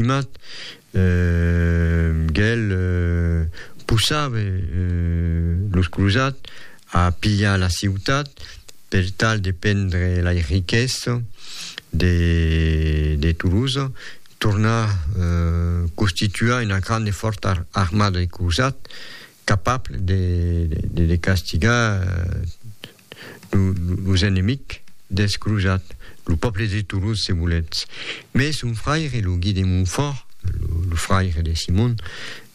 Estimat, gèl possave los crosat a pilhar la ciutat per tal de prendre lai riquèsses de Toulouse, tornar constituar una grande fòrta armada de crosat capable de castigar los enemics deth crosat, lo pòble de Toulouse, se voletz. Mès son fraire, lo Gui de Montfòrt, lo fraire de Simon,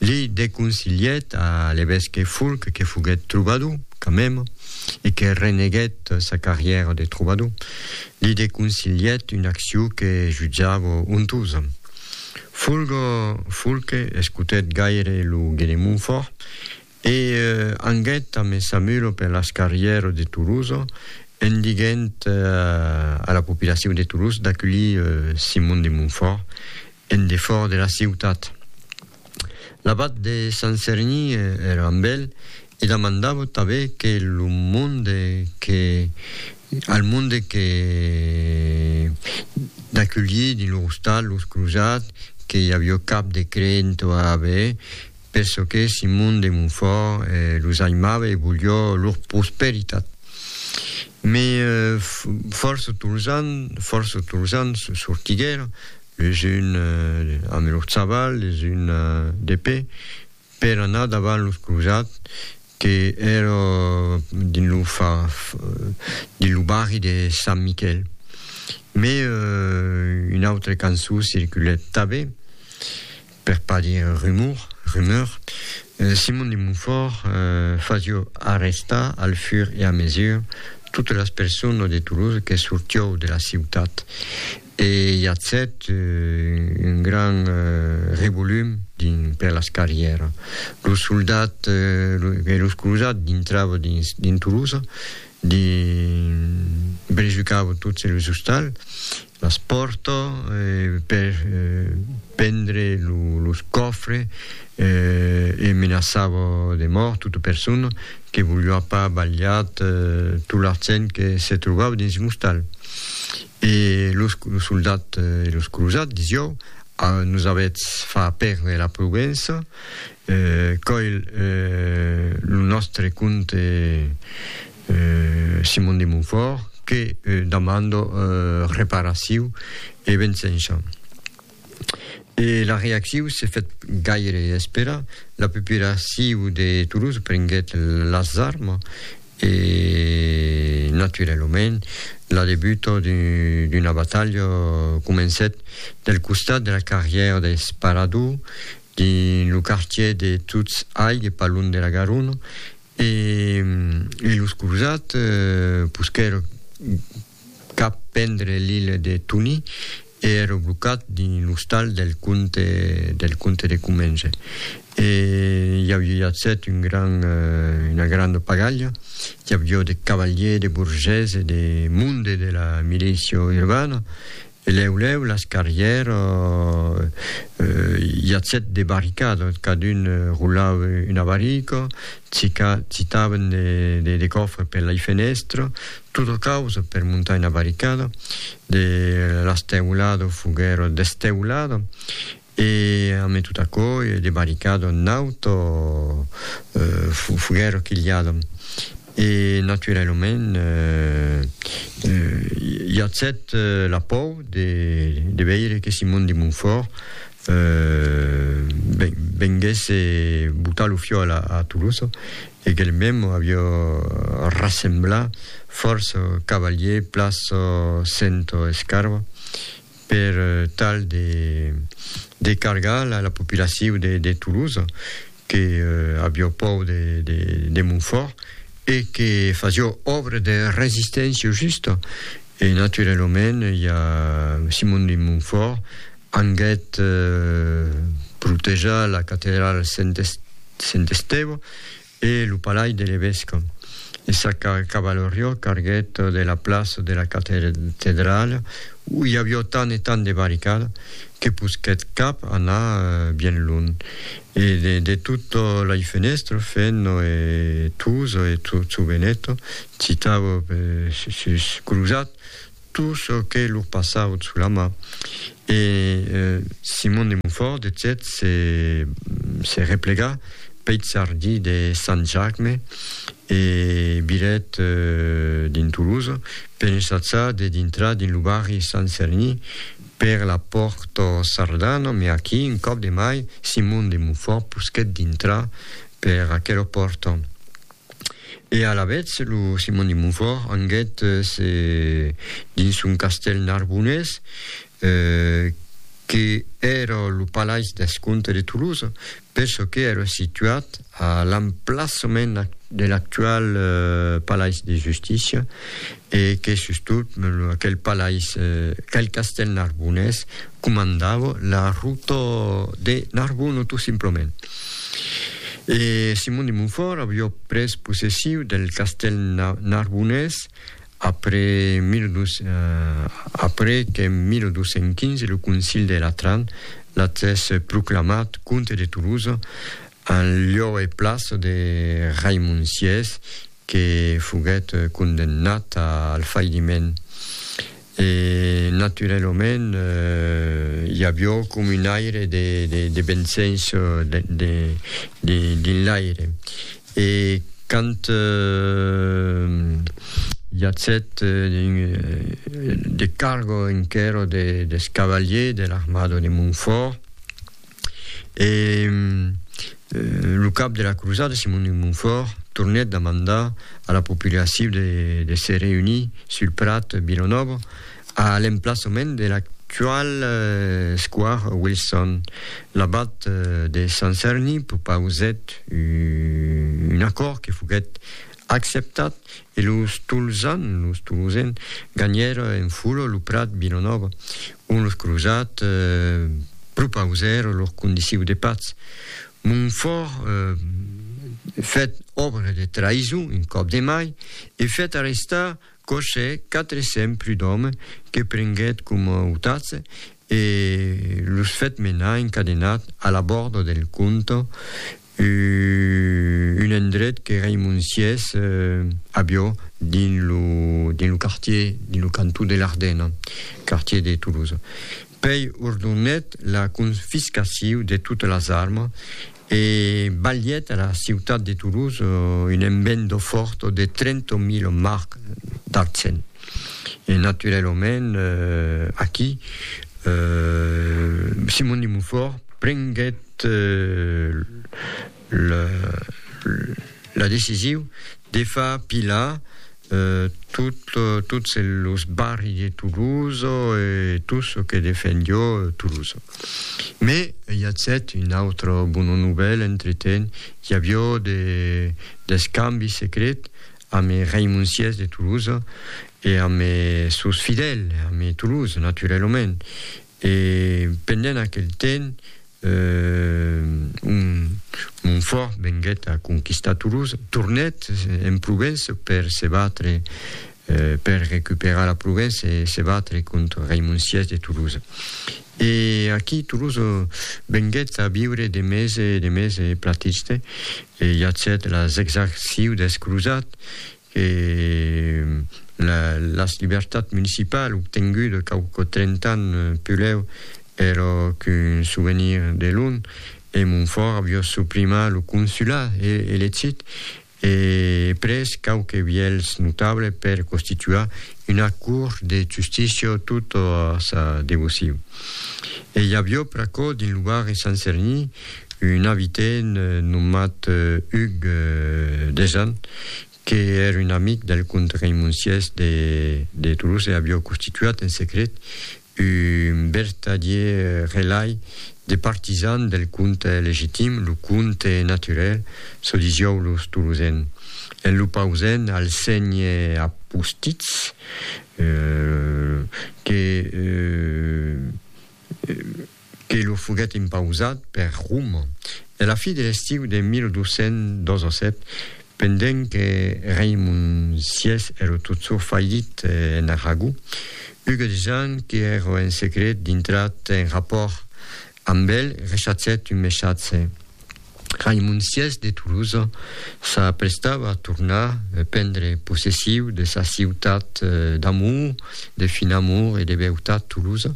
li deconsilhèt a l'evesque Fulc, que foguèt trobador, quand même, e que reneguèt sa carrièra de trobador, li deconsilhèt una accion que jutjava ontosa. Fulc escotèt gaire lo Gui de Montfòrt E anguèt a Messamuro per las carrièras de Tolosa, en diguent a la populacion de Tolosa d'aculhir Simon de Montfòrt en defòrt de la ciutat. L'abat de Sant Cerni èra amb el e damandava tanben que lo monde que al monde que d'aculhir dins lor ostal los crosats que i aviá cap de creent a aver, Per çò que Simon de Montfòrt los aimava e volió lor prosperitat. Mai fòrça Tolzan, fòrça Tolzan sortiguèr, les un amb lor chaval, les un d'epé, per anar davant los crosats que èra dins lo dins lo barri de Sant Miquèl. Mai un autre cançon circulèt tabé. Per pas dire un rumor, rumeur, Simon de Montfòrt fasió arrestar al fur e a mesure totes las personas de Toulouse que sortió de la ciutat e i acèt un gran revolum dins per las carrièras. Los soldats e los crosats dintravan dins dins Toulouse, dins brejucavan totes los ostals Las pòrto per prendre los còfres e menaçava de mòrt tota persona que voliá pas balhar tot l'argent que se trobava dins un ostal. E los soldats e los crosats disiáu, Nos avètz fach pèrdre la prudença, còil lo nòstre compte Simon de Montfort, que demando reparaciu e vensença. E la reacciu se fèt gaire espera, la populaciu de Toulouse prenguèt las armas e naturalament la debuta d'una batalha comencèt del costat de la carrièra d'Esparador, dins lo quartièr de Touts-Aigue, pas lunh de la Garona, E los crosats posquèron cap prendre l'Ile de Tony e èron blocats dins l'ostal del comte del comte de Comminges. E i aviá set un grand una granda pagalha, i aviá de cavaliers, de borgés e de monde de la milicia urbana, E lèu lèu las carrièra i atzèt de barricada, cadun roulava una barrica, cica citavan de de còfre per lai fenèstra, tota causa per montar una barricada, de las teulada foguèra desteulada E amé tot aquò, de barricadon naut o foguèron quilhadon. E naturalament i atzèt la pòur de veire que Simon de Montfort venguèsse botar lo fiòl a Toulouse e qu'el mèm avió rassemblat fòrça cavaliers plaça Sento Escarva, per tal de de cargar la la populaciu de de Toulouse que avió pòur de de de Montfòrt e que fasió òbre de resisténcia justa e naturelomèn i a Simon de Montfòrt anguèt protejar la catedrala Sent Estèva E lo palais de l'evesque. E sa cavalorió carguèt de la plaça de la catedrala, où i avió tant e tant de barricada, que posquèt cap anar bien lunh. E de tutto lei fenèstre, Fenno e Tuso e Zuzuveneto, citavo per sus, cruzat, tot çò qu'ei lor passaut sous la mà, e Simon de Montfòrt, de cèt, se replega peth jardí de Sant Jacme e viret dins Toulouse per ensajar de dintrar dins lo barri Sant Serni per la pòrta Sardana, mès aquí, un còp de mai, Simon de Montfòrt posquèt dintrar per aquela pòrta. E alavetz lo Simon de Montfòrt anguèt se dins son castèl narbonés, que èra lo palais deth comte de Tolosa, per çò que èra situat a l'emplaçament de l'actual palais de justícia, E que sustot aquel palais, aquel castèl narbonés, comandava la rota de Narbona tot simplament. E Simon de Montfòrt aviá pres possessiu del castèl narbonés après que en 1215 lo concil de Latran l'atès proclamat comte de Tolosa En lieu e place de Raimon Siès, que foguèt condemnat al failiment. E naturelament i avió com un aire de bensens dins l'aire. E quand i atzèt de cargo enquerò des cavaliers de l'armada de Montfort, E lo cap de la crosada, Simon de Montfòrt, tornèt demandar a la populacion de se reunir sul prat Vilanòva a l'emplaçament de l'actual square Wilson. L'abat de Sant Cerni propausèt un acòrd que foguèt Acceptat, e los Tolzan, los Tolosen, ganhèron en fula lo prat Vilanòva, ont los crosats propausèron lor condiciu de patz. Montfòrt fèt òbra de traïson un còp de mai e fèt arrestar Coche 400 prud'òme que prenguèt coma otatz e los fèt menar encadenats a l'abòrd del Conte Un endret que reimonsies a Biò dins lo quartier, dins lo cantó de l'Ardena, quartier de Toulouse. Pei ordonèt la confiscaciu de totas las armas e balhèt a la ciutat de Toulouse un enbendo fòrt de 30.000 marcs d'argent. E naturelament aquí Simon de Montfòrt prenguèt la decisiu de far pilar tots los barri de Toulouse e tot çò que defendió Toulouse. Me i a cèt una autra bona novèla entretent, i avió d'escambi secret ame raimonciers de Toulouse e ame sos fidèls, ame Toulouse, naturelament. E pendent aquel temps, un Montfort venguèt a conquistar Toulouse, tornèt en Provence per se batre, per recuperar la Provence e se batre contra Raimond vi de Toulouse. E aquí Toulouse venguèt a viure de mes e de mes platiste e i acèt las exacciu dels crosats que las libertats municipal obtenguda cau quò 30 ans pulèu ero qu'un souvenir de lon e Montfòrt avió suprimar lo consulat e elegit e pres quauque vielhs notable per constituar una cour de justícia tot a sa devocion e i avió pr'aquò dins lo barri Sant Cerni un abitent nomat Hugues Desan, que èr un amic del comte Raimonciès de Toulouse, avió constituat en secret un vertadier relai de partisan del comte legitim, lo comte naturel, çò disiou los Toulousains, en lo pausent al sénher Apostitz, que que lo foguèt impausat per Roma a la fi de l'estiu de 1227, pendent que Raimond vi èra totjorn falhit en Aragó, Hugues de Jean, que èra en secret dintrat en rapòrt amb el, rechatzèt un messatge. Raimon vi de Tolosa s'aprestava a tornar prendre possessiu de sa ciutat d'amor, de fin amor e de beutat Tolosa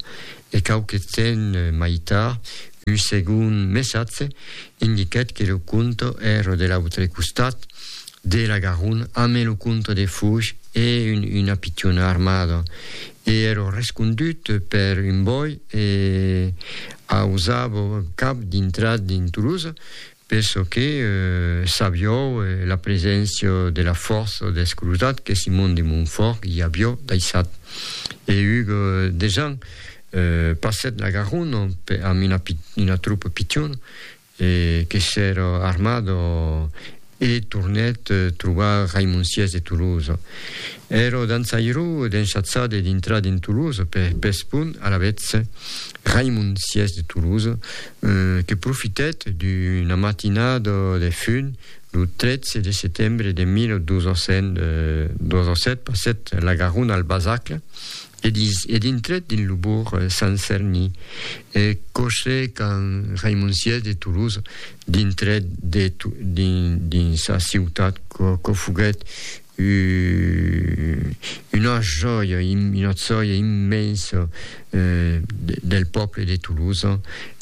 e quauque temps mai tard un segond messatge indiquèt que lo conte èra de l'autre costat De la Garonne, amé lo comte de Fouge e una pitiona armada, e ero rescondut per un bòi e ausavo cap dintrat dins Toulouse, per çò que sabió la preséncia de la fòrça deth crosat que Simon de Montfort i avió daissat. E hug desan passèt la Garonne amb una tropa pitiona, E que s'èr armat e tornèt trobar Raimon Siès de Tolosa. Èr dançairó d'enchatzar de dintrar d'en Tolosa per pes pon alavetz Raimon Siès de Tolosa que profitèt d'una matinada de fun lo 13 de setembre de 1207 passèt la Garona al Basacle E dins e dintre, dins lo bourg, Sant Cerni, e coche qu'an Raimoncièrs de Toulouse dintre de dins sa ciutat quo foguèt una jòia, una jòia immensa del pòble de Toulouse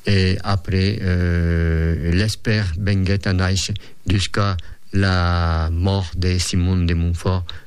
e après l'Esper venguèt a nàisher jusqu'a la mòrt de Simon de Montfort